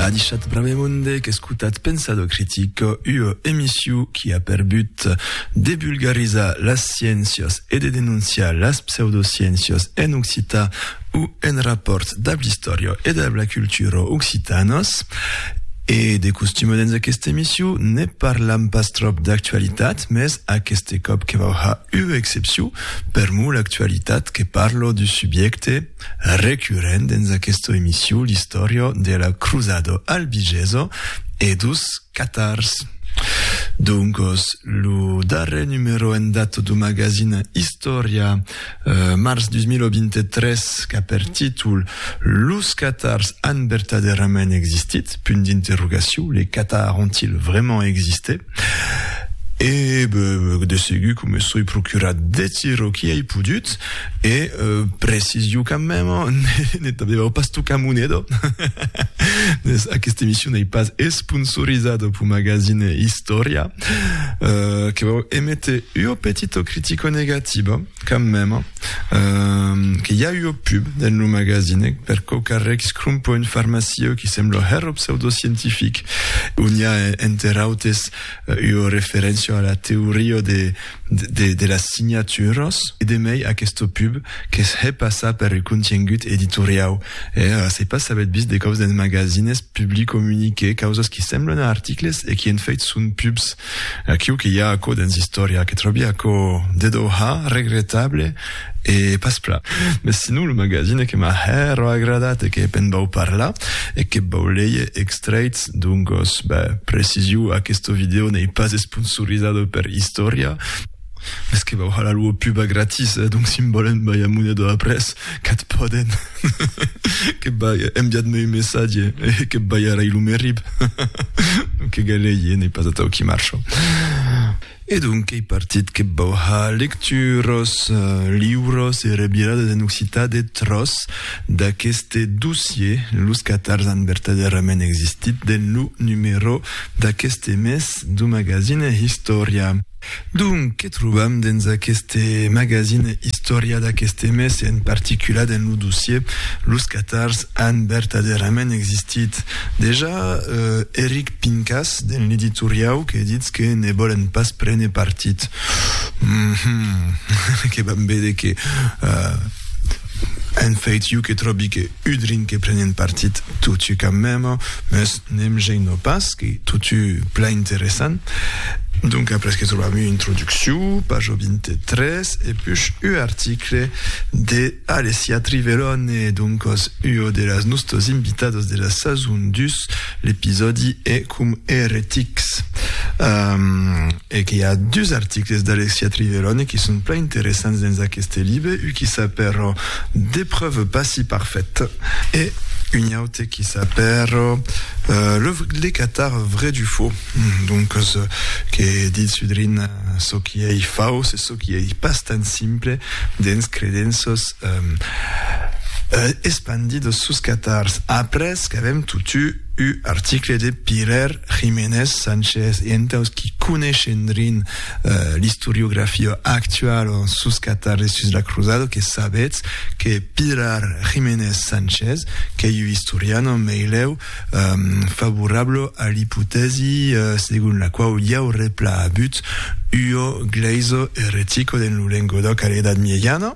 A dichat Bramemonde qu'escotat Pensado Critico, ua emissiu qui a per but de vulgarizar las sciéncias e de denonciar las pseudosciéncias en occitan o en rapòrt dab l'istòria e dab la cultura occitanas. E de costum dens aquesta emissiu ne parlam pas tròp d'actualitat, mès aqueste còp que vau har ua excepciu, per mot l'actualitat que parla du subjècte, recurrent dens aquesta emission l'istòria de la crusada albigesa e dos catars. Doncas, lo darrèr numèro en data do magazin Istòria, març 2023, qu'a per títol Los catars an vertadèrament existit? Les catars ont-ils vraiment existé? E de segur que me soi procurat deth çò qui ei podut, e precisio quand meme, ne t'aviáu pas tocat moneda, aguesta emission ei pas esponsorizada pau magazine Istòria, que vau émetre ua petita critica negativa. Quand mème que i a ua pub dens lo magazinèc per quò qu'arrèc scrumpo un farmacieu qui sembla hèr o pseudoscientific, ont i a enter autes ua referéncia a la teoria de las signaturas, e de mei aquesta pub que's hè passar per ua contiengut editoriau, e se pas s'avètz vist de còps dens magasines publicomuniquer causas qui semblan a articles e qui en fèit son pubs. Aquiu que i a aquò dens istòria que tròbi aquò de doha regretable e pas plan. Mes sinon lo magazine que m'a hèro agradat e que pen vau parlar e que vau leie extraits d'Ongos. Beh, preciziu, aquesto video n'ei pas esponsorizado per istòria. Mes que vau hala lo pub a gratis eh donc si volen bai a Munedo après qu'ath pòden que bai enviat me un messatge eh que bai a rai lo merib donc que galei eh n'ei pas atau qui marcho e donc qu'ei partit que vau ha lecturos liuros e rebiradas en occitan de tros d'aqueste dossier los catars an vertadèrament existit den lo numero d'aqueste mes du magazine Historia. Donc, que trobam dens aqueste magazine Istòria d'aqueste mes e en particular dens lo dossier Los catars an vertadèrament existit? Dejà, Eric Pincas, dens l'editoriau, que ditz que ne vòlen pas prene partit. Hum-hum, que vam véder que en fait iu que tròbi que Udrin que prenent partit totu qu'am mem, mes ne'm geino pas, qu'ei totu plan interessant. Donc après que trobam ua introduccion, pajo 23, e push ua article de Alessia Trivelone, doncos ua de las nostos invitados de la sason 2, l'episòdi e com eretics. Um, E qu'i a dus articles d'Alexia Triverone qui son plan interessants dens aqueste libe, un qui s'apèro Des preuves pas si parfaites e un aute qui s'apèro Le les catars vrais du faux, doncas que ditz sudrin çò qui ei fauç e çò qui ei pas tan simple dens credenças espandidas sus catars. Après qu'avèm totu U article de Pièr Jiménez Sánchez e entaus qui coneishen rin l'istoriografia actuala sus Catar e sus la Cruzada que sabetz que Pièr Jiménez Sánchez qu'ei u istorian en meilèu favorable a l'ipotèsi segon la quau i aureplà abut ua glèisa eretico dens lo Lengodoc a l'Edat Miejana.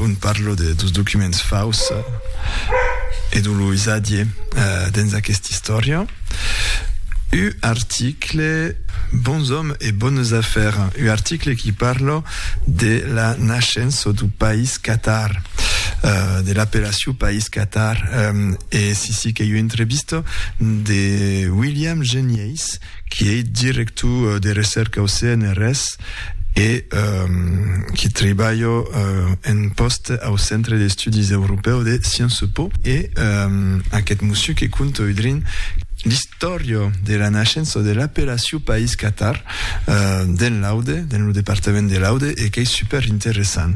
ont parlo de dos documents faus e de lo usatge dens aquesta istòria, un article Bons òmes e bones afèrs, un article qui parla de la nascença du país Qatar, de l'apellacion país Qatar, e si si qu'ei una entrevista de William Genièis, qui ei director de recèrca au CNRS e qui tribalha en pòst au Centre d'Estudis Europèus de Sciences Po, e aqueth mossiu que conta udrin l'istòria de la naishença de l'apellacion País Catar dens l'Aude, dens lo departament de l'Aude, e qu'ei super interessant.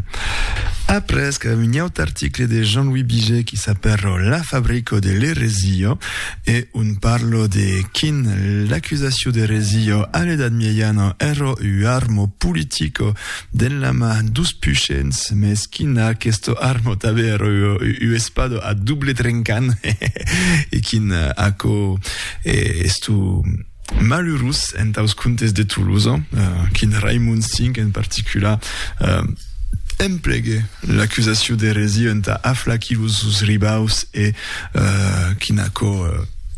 Après, qu'un aut article de Jean-Louis Biget qui s'apèra La fabrico de l'eresia. E un parlo de quin l'accusacion d'eresia a l'edat miejana èra ua arma politica dens la man dus pushents, mès quin aquesta arma tanben èra ua espada a doble trencant, e quin aquò es tu. malurós entaus contes de Tolosa, quin Raimond V en particular emplegue l'acusacion d'eresia entà aflaquir los sos ribaus e quin aquò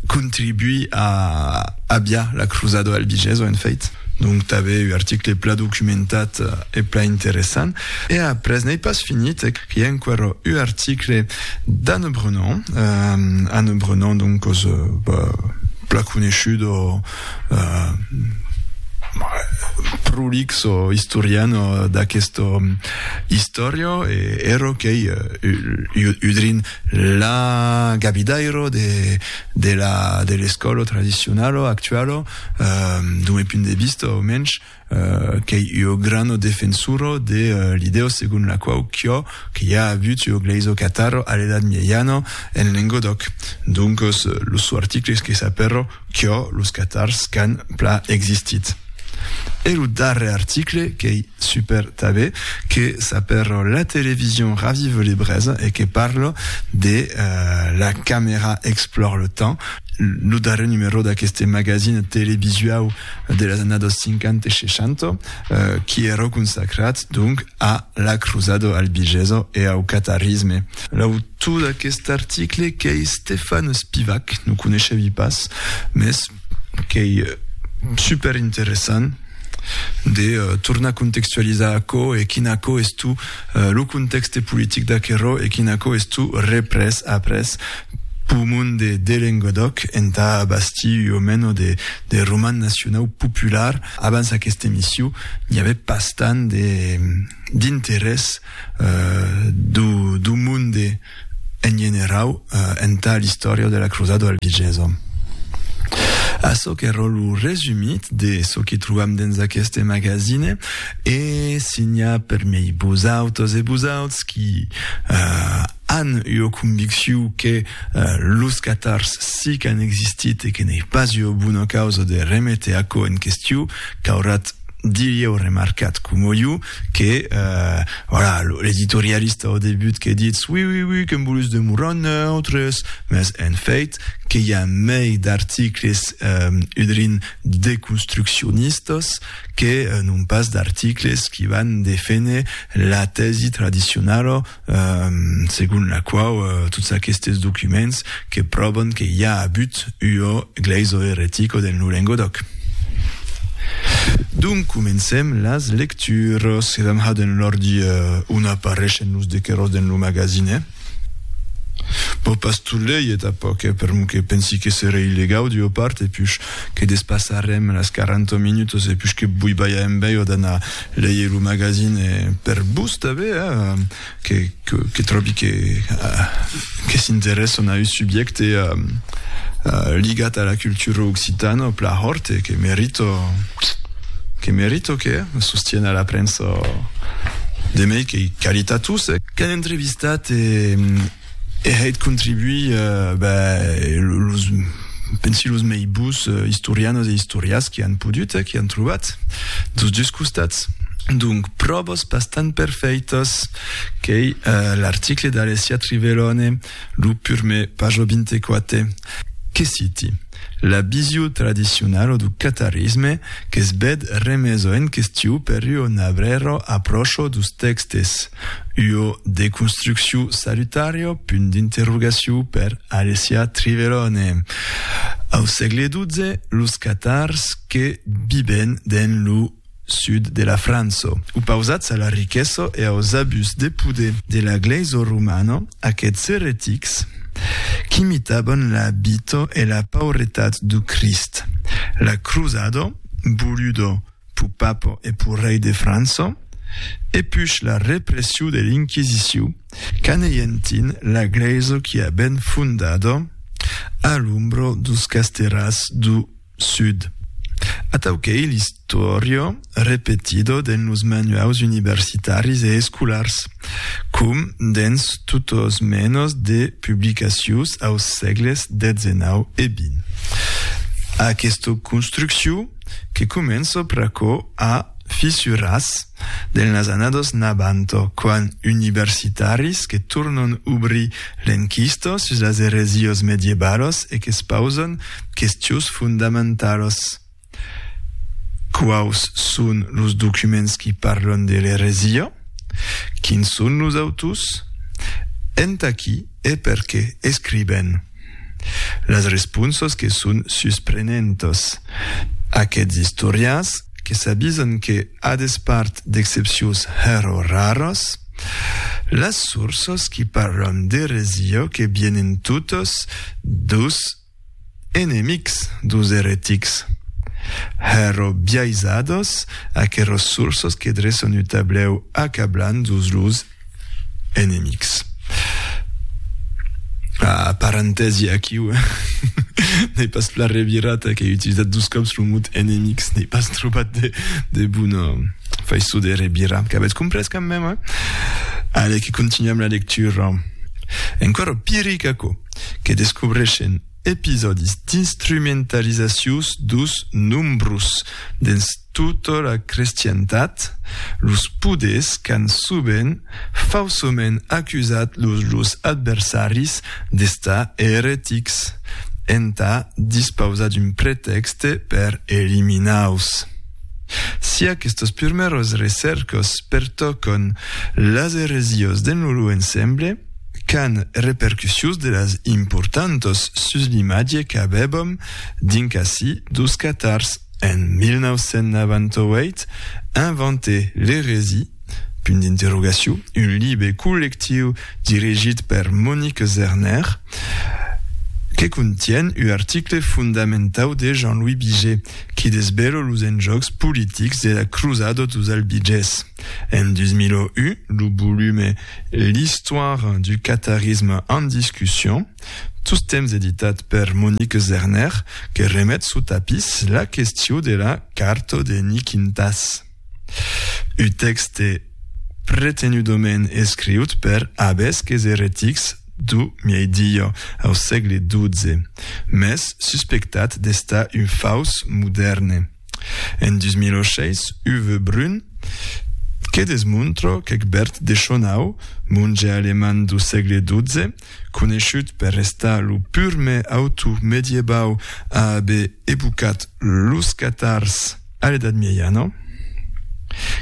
contribuí a aviar la crusada albigesa, en fèit. Donc, tanben un article plan documentat e plan interessant. E après, n'ei pas finit, qu'i a enquara ua article d'Anne Brennan, eh, Anne Brennan, donc, cos, bah, plan coneishut o, eh, prolix o istorian o d'aquesta istòria, e era qu'ei ua udrin la gabidaira de, de la, de l'escòla tradicionala actuala, eh, d'un punt de vista, au mensh, Qu'ei ua grana defensora de l'idèa segon la quau quò que i a avut ua glèisa catara a l'Edat Mieiana en Lengodòc. Doncas, los sò articles que s'apèra quò los catars qu'an pla existit. E lo darrèr article qu'ei super tabé, que s'apèra La télévision ravive les brèzes e que parla de La caméra explore le temps, lo darrèr numerò d'aqueste magazine televisuau. de las annadas 50 e 60, qui èra consacrat, donc, a la crusada albigesa e au catarisme. L'autor d'aqueste article, qu'ei Stefan Spivak, non coneishevi pas, mès qu'ei super interessant de tornar contextualizar aquò e quin aquò es tu lo contexte politic d'aquerò e quin aquò es tu reprès après Pur monde de Lengodoc entà bastir ua mena de de roman nacionau popular. Abans aquesta emission n'i avè pas tant de d'interès do do monde en generau entà l'istòria de la crosada albigesa. Açò qu'èra lo resumit de çò que trobam dens aqueste magazine e si n'i a permei vosautas e vosauts qui An ua convicciu que los catars si qu'an existit e que n'ei pas ua bona causa de reméter aquò en questiu, caurat dilhèu remarcat coma jo que, voilà, l'editorialista au debut que ditz oui, oui, oui, qu'an volus demorar neutres, mès en fèit que i a mei d'articles udrin deconstruccionistas que non pas d'articles qui van deféner la tèsi tradicionala segon la quau tots aquestes documents que pròvan que i a abut ua glèisa eretica dens lo Lengodoc. Donc comencem las lecturas, que damb hat en l'ordi on apareishen los dequeròs dens lo magazine. Bo pas tot lei e tapoc eh, per mon que pensi que seré illegau d'ua part e puish que despassarem las 40 minutas e puish que boibalha en bèia d'anar Leie lo magazine per vos tanben, que, que, que tròbi que, que s'interèsson a un subjècte ligat a la cultura occitana o pla hòrt e que merito, que merito que sostien a la premsa de mei qu'ei qualitatós. Qu'an entrevistat e E hèt contribuir, los, pensi los mei bus istorianos e istorias que an podut, que an trobat, dos dus costats. Donc, pròvas bastant perfèitas qu'ei l'article d'Alessia Trivellone, lo purme, paja 24, que citi, La vision tradicionala du catarisme que's bèd remesa en question per ua nabrèra apròcha dus tèxtes, Ua deconstrucciu salutaria? punt d'interrogaciu per Alessia Trivelone. Au sègle XII, los catars que viben dens lo sud de la França, opausats a la riquesa e aus abús de poder de la glèisa romana, aqueths eretics qu'imitavan la vita e la pauretat du Crist, la crusada, voluda pus papa e pus rei de França, e pus la repressiu de l'Inquisiciu, qu'aneyentin la Glèisa qui a ben fondada a l'ombra dos casterats du Sud. Atau qu'ei l'istòria repetida dens los manuaus universitaris e escolars, com dens totas menas de publicacius aus sègles xix e xx. Aquesta construcciu, que començo pr'aquò a fissuras del nasanados n'abanto quan universitaris que tornon ubrir l'enquista sus las eresios mediebalos e qu'espausan questions fondamentalos. Quaus son los documents qui parlon de l'eresia? Quins son los autors? Entà qui e perqué escriben? Las responsas que son susprenentas. Aqueths istorians que s'avisan que, a despart d'excepcions hèro raras, las sorsas qui parlan d'eresia que vienen totas deus enemics deus eretics. Hèro biaisadas aqueras sorsas que dreçan un tablèu acablant deus los enemics. Ah, parentèsi aquiu, n'ai pas la revirata qu'ai utilizat dos cops lo mot enemics, n'ai pas trobat de, de bona faiçó de revirar, qu'avètz comprés quand même, eh? Allez, que continuam la lectura. Encara piric aquò, que descobreixen episòdis d'instrumentalizacions dos nombros, Tota la crestientat, los poders qu'an sovent fausoment acusat los lors adversaris d'estar eretics, entà dispausar d'un pretèxte per eliminar-los. Si aquestos purmèros recèrcos pertòcon las eresiós d'en loro ensemble, qu'an repercussions de las importantos sus l'imatge qu'avèbom dinc ací dos catars, En 1998, inventè L'Eresie, punt d'interrogacion, un libe collectiu dirigit per Monique Zerner, que contien u article fondamentau de Jean-Louis Biget, qui desbelo los enjòcs politics de la crusada dos Albigés. En 2001, lo volume L'histoire du catharisme en discussion, Tostemps editat per Monique Zerner, que remet suu tapís la questiu de la carto de Niquintas. U tèxte pretenudament escriut per abesques eretics du miei-diio au sègle XII, mès suspectat d'estar un faus modèrne. En 2006, Uwe Brun, que desmontro qu'Egbert de Schonau, monge alemand du sègle XII, coneishut per restar lo purme auto mediebau a aver ebucat los catars a l'Edat Mieiana,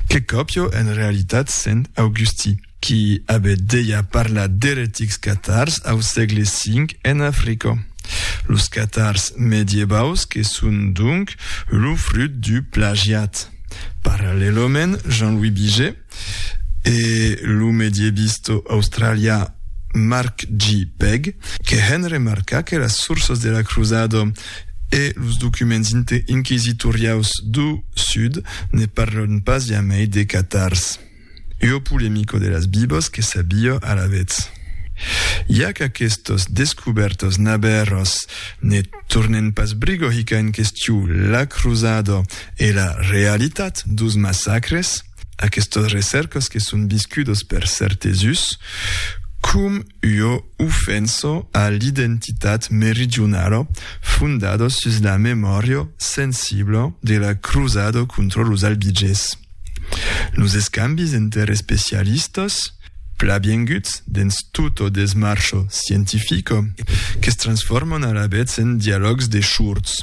que còpio en realitat Sent Augusti, qui aver deia parlar d'eretics catars au sègle V en Africa. Los catars mediebaus que son donc lo frut du plagiat. Parallèlament, Jean-Louis Biget, e lo medievist australian Mark G. Pegg, que hèn remarcar que las sourças de la crusada e los documents inquisitoriaus do Sud ne parlan pas jamai de catars. Ua polemica de las bibas que s'abia alavetz. Ja qu'aquestas descubèrtas nabèras ne tornen pas briga hicar en question la crusada e la realitat dos massacres, Aquestos recèrcos que son viscudos per cèrtes us com ua ofenso a l'identitat meridionala fondado sus la memòria sensibla de la crosada contra los Albigés. Los escambis enter especialistas, plabienguts dens tota desmarcha scientifica, que se transforman alavetz en dialògs de shurts.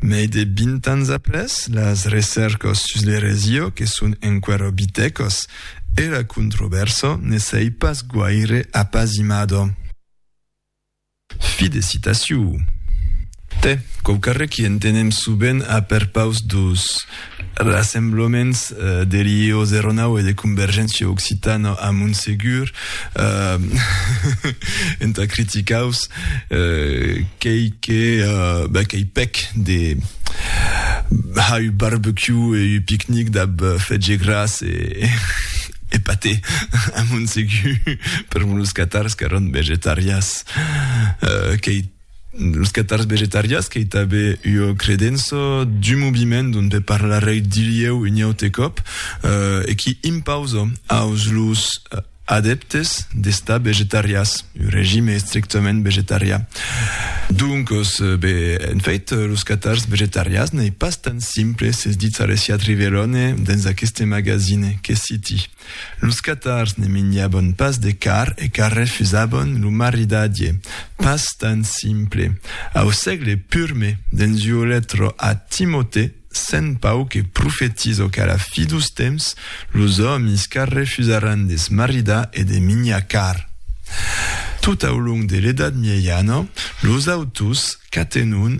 Mai de vint ans après, las recèrcas sus l'eresia que son enqüèra bitecas e la controvèrsa ne s'ei pas guaire apasimada. Fi de citacion. Tè, quauquarre qu'i entenem subent a perpaus dus. Rassemblaments de Lieu 09 e de Convergéncia Occitana a Montsegur entà criticaus qu'ei que qu'ei pèc de har ua barbecue e ua picnic dab fetge gras e paté a Montsegur per los catars qu'èron vegetarians. Qu'ei. los catars vegetarians qu'ei tanben ua credença d'un moviment dont pe parlarei dilhèu un aute còp e qui impausa aus los adèptes d'estar vegetarians un regime estrictament vegetarian. Doncos, be, en fait, los catars vegetarians n'ei pas tan simples es ditz Alessia Trivelone dens aqueste magazine, que citi. Los catars ne minjabon pas de car e car refusabon lo maridadie, pas tan simple. Au sègle purme, dens ua letra a Timotè, Sent Pau que profetizo qu'a la fi dos temps, los òmis car refusaràn de se maridar e de minjar car. Tot au long de l'Edat Miejana, los autors qu'atenon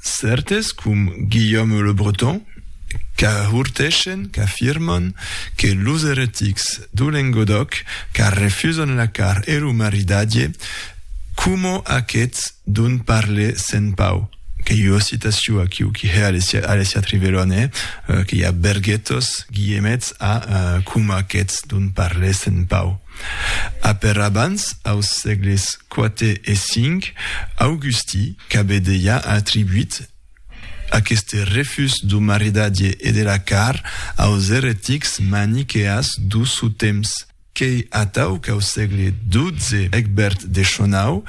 Cèrtes com Guillaume le Breton qu'ahurtèshen, qu'afirman que los eretics do Lengodòc qu'arrefusan la car e lo maridatge, coma aqueth dont parle Sent Pau, qu'ei ua citacion aquiu qui hè Alessia Trivelon, hè, que i a berguetos guillemets a coma aqueth dont parle Sent Pau. Apèr abans, aus sègles quate e cinc, Augusti qu'avè dejà atribuit aqueste refús dau maridadie e de la car aus eretics maniqueas dau suu temps, qu'ei atau qu'au sègle dotze Egbert de Schonau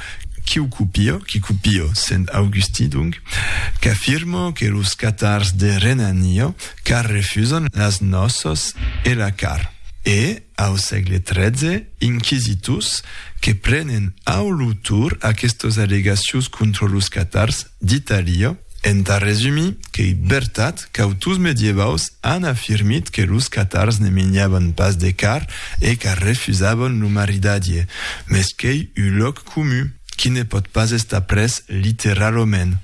quiu copio, qui copio? sent Augusti donc, qu'afirmo que los catars de Renanio car refusan las nòços e la car, e. Au sègle tretze, inquisitors que prenen au lo tor aquestos allegacions contra los catars d'Itàlia. Entà resumir, qu'ei vertat qu'autors medievaus an afirmit que los catars ne menjavan pas de carn e qu'arrefusavan lo maridatge, mès qu'ei un lòc comun qui ne pòt pas estar pres literalament.